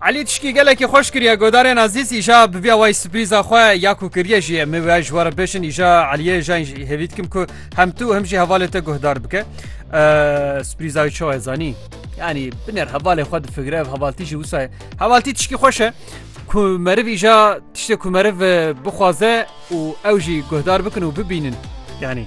Elî tişkî gelekî xweş kiriye godarên Azîz îja biviya wayî sürprîza xwe ya ku kiriye jî min wê ji we re bêşin îja Eliyê jan jî hêvî dikim ku hem tu hem jî hevalê te guhdar bike sürprîza wî çawa zanî yanî binêr hevalê xwe difikire ev hevaltî jî wisa ye hevaltî tişkî xweş e ku meriv îja tiştê ku meriv bixwaze û ew jî guhdar bikin û bibînin yanî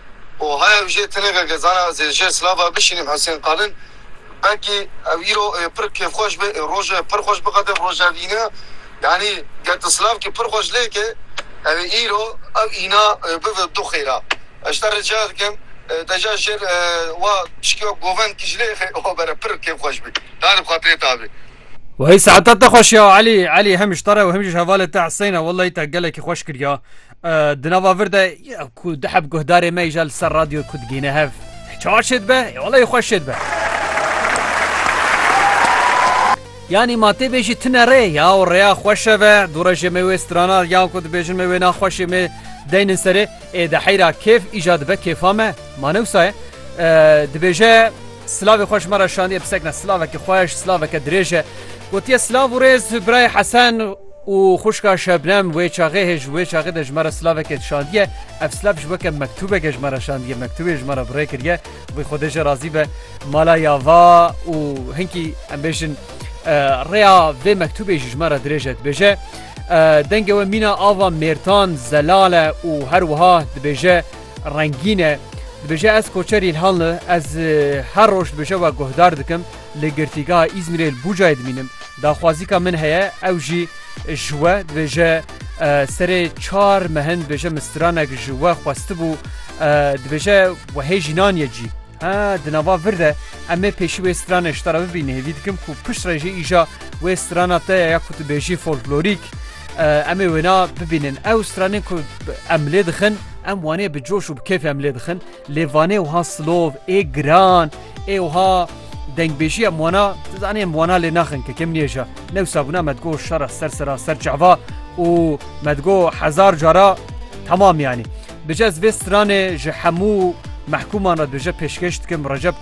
û haya ew jê teneke gezana ez ê jê silava bişînim Husên Qalin belkî ew îro ê pir kêfxweş be ê rojo ê pir xweş biqede bi roja vî ne yanî ger tu silavkî pir xweş lê ke ew ê îro ew îna bive du xêra ez ji te rica dikim deja jêr wa piştî govend kî ji lê xê xwe bere pir kêfxweş bî da li bi xatirê ta bê. Wayî saeta te xweş ya Elî Elî hem ji te re û hem jî ji hevalê te Huseyna wellahî te gelekî xweş kiriya. Di nava vir de ku diheb guhdarê me îja li ser radyo ku digîne hev. Çar şêd be, olayê xweş şêd be. Yanî ma tê bêjî tine rê ya û rêya xweşe ve du rejê me wê strana yan ku dibêjin me wê na xweşê me deynin serê ê de heyra kêf îja dibe kêfa me ma newsaye dibêje Slavê xweş me re şandiye pisekne slaveke xweş slaveke dirêje gotiye slav û rêz birayê hesen Û xwişka Şebnem wê çaxê hê ji wê çaxê de ji me re silavekê dişandiye. Ev silav ji weke mektûbeke ji me re şandiye. Mektûbê ji me re bi rê kiriye. Wê Xwedê jê razî be mala ya va û hinkî em bêjin rêya vê mektûbê jî ji me re dirêj e. Dibêje dengê we mîna ava mêrtan, zelal e û her wiha dibêje rengîn e. Dibêje ez koçerî Îlhanli ez her roj dibêje we guhdar dikim. Li Girtîgeha Îzmîrê li Bucayê dimînim. Daxwazîka min heye ew jî ji we dibêje serê çar mehin dibêje min stranek ji we xwestibû dibêje we hê jînan ye cî. Ha di nava vir de em ê pêşî wê stranê ji te re bibînin. Hêvî dikim ku pişt re jî îja wê strana te ya ya ku tu bêjî folklorîk em ê wêna bibînin. Ew stranên ku em lê dixin em wanê bi coş û bi kêfê em lê dixin. Lê vanê wiha silov ê giran ê wiha dengbêjiya mi wana tu zanî em wana lê naxin ke kim nêja newsa bûna me digo şera ser sera ser çava û me digo hezar cara temam yanî. Bije ez vê stranê ji hemû mehkûman re dibije pêşkêş dikim Recep